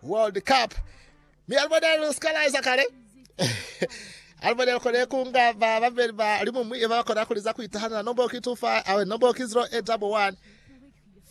World Cup, mi alibonela lu sika laiza kale. alibonela kone kunga ba babeli ba limumwi eba bakona kuliza kuitahanela nombo ki 25 awe nombo ki 0811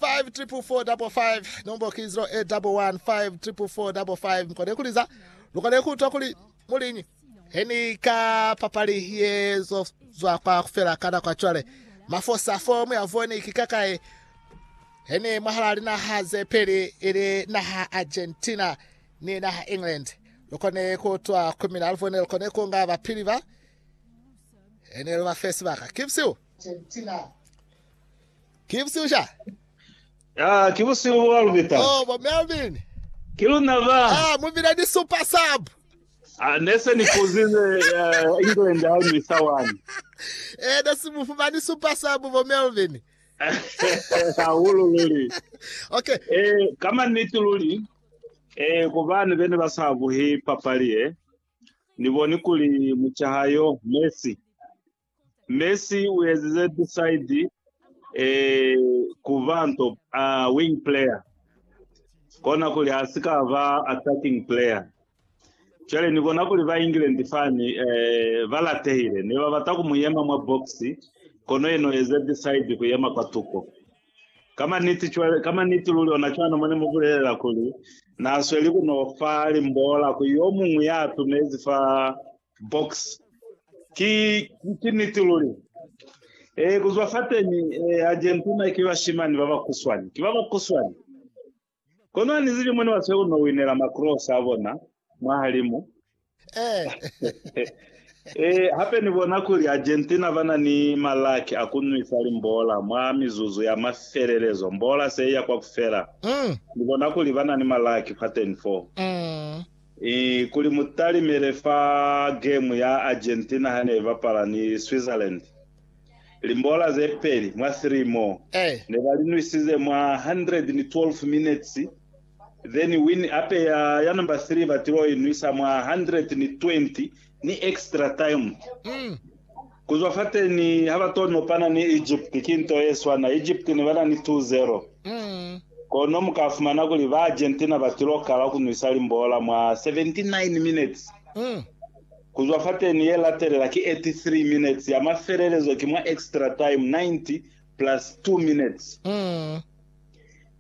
5445 nombo ki 0811 5445 mkone kuliza lukone kuutwa kuli muliñi He ni ka papali ye zo zwa kwa kufela ka nako cwale. Mafosa fo mu ya voni ki ka kai. He ni mwahala linaha ze peli ili naha Argentina ni naha England. Lukone ku twa ku mina aluvone lukone ku nga bapili ba. He ni lu ba fesi baka. Kibsiu. Argentina. Kibsiu sha. Ah, ki busiu bwa lubita. Oh, bo Melvin. Ki luna ba. Ah, mubile ni super sub. Ah, ne se ni kuzize uh, England ha ni sa wani. Eh, ne si mu fumani supa sa bu bo Melvin. Hahulu luli. Okay. Eh, kama niti luli. Eh, kubani bene ba sa buhi papali eh. Ni boni kuli muchahayo Messi Messi u ezize tisaidi e ku ba nto a wing player, kona kuli ha si ka ba attacking player. Cwale ni bona kuli ba England fani eh, ba latehile. Ne ba bata ku mu yema mwa box, kono yena u eze tisaidi ku yema kwa tuko. Ka maniti, cwale, ka maniti luli ona cwana mo ne mu bulelela kuli na sweli ku no fa limbola ku yo muñwi ya tumezi fa box. Ki, ki niti luli. E, kuzwa fateni, e, Argentina ki bashimani babakuswani. Ki babakuswani. Kono anizibi mo nebasweli kuno winela macross abona mwahalimu. E, hape Ni bona kuli Argentina bana ni malaki a kunwisa limbola mwa mizuzu ya mafelelezo, mbola se iya kwakufela. Ni bona kuli bana ni malaki fateni foo. I kuli mu talimele fa gemu ya Argentina ha ne i bapala ni Switzerland limbola ze peli mwa three mo ne ba li nwisize mwa 112 minutes, then win ape ya ya number three ba til'o i nwisa mwa 120 Ni extra time. Mm. Kuzwa fateni haba to nopana ni Egypt ki nto ye swana. Egypt ne bana ni 2-0. Mm. Kono muka fumana kuli ba Argentina batilo kala kunwisa limbola mwa 79 minutes. Mm. Kuzwa fateni ye latelela ki 83 minutes ya mafelelezo ki mwa extra time 90 plus 2 minutes. Mm.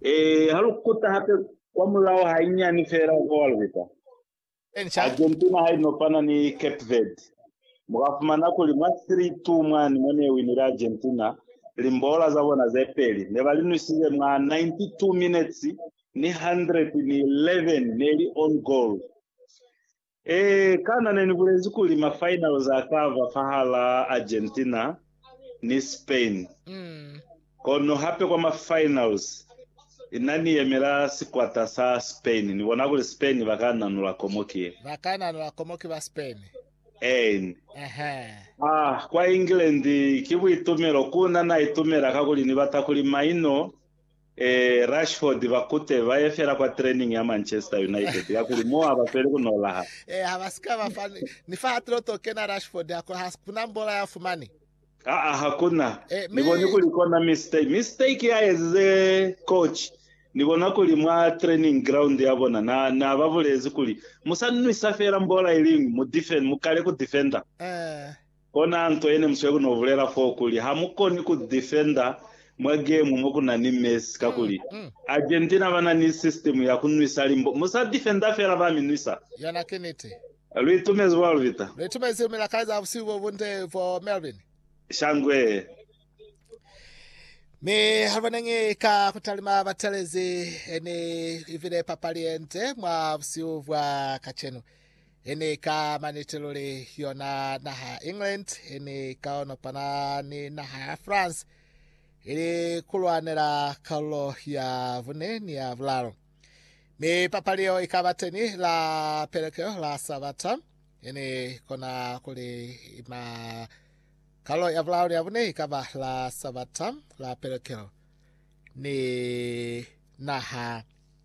E, halukuta hape kwa mulao hainyani fela goalkeeper. Argentina ha i no fana ni Cape Verde, mu ka fumana kuli mwa 3-2 mwani mo ne winile Argentina, limboola za bona ze peli ne ba li nwisize mwa 92 minetsi ni 111 ne li own goal. Ee, kana ne ni bulezi kuli mafinals a ka ba fahalaa Argentina? ni Spain, kono hape kwa ma finals ina ni yemela sikwata sa Spain. Ni bona kuli Spain ba ka nanula komo ki ye. Ba ka nanula komo ki ba Spain. Een. A kwa England ki buitumelo, ku na na itumela kakuli ni bata kuli maino Ee, Rashford ba kute ba ye fela kwa training ya Manchester United, kakuli mo ha ba sweli ku nolaha. Ee, ha ba si ka ba fa ni, ni fa hatelo to kena Rashford, ha ku, ha ku na mbola ya fumani. Aa, ha ku na. Ee, Ni mi. boni kuli kona mistake, mistake ya ezize coach. Ni bona kuli mwa training ground ya bona, na, na ba bulezi kuli, Mu sa nwisa fela mbola iliñwi, mu defen, mu kale ku defender. Ee. Kona nto yene musweu no bulela foo kuli ha mu koni ku defenda mwa gemu mo ku na ni Messi kakuli Argentina ba na ni system ya ku nwisa limbo. Mu sa defenda fela ba mi nwisa. Yona ki niti. Lu itumezi bo Alvita? Lu itumezi milakazi ya busihu bo bunde bo Melvin. Shangwe. Mi ha lu boneñi ka ku talima batelezi, ne i bile papali ye nde mwa busihu bwa kacenu. He ni ka maniti luli yona naha ya England he ni ka onopana ni naha ya France ili kulwanela kalulo ya vune ni ya vulalu. Mi papali yeo ikaba teni la pelekeo la Sabata he ni kona kuli ima kalulo ya vulalu ni ya vune ikaba la Sabata la pelekeo ni naha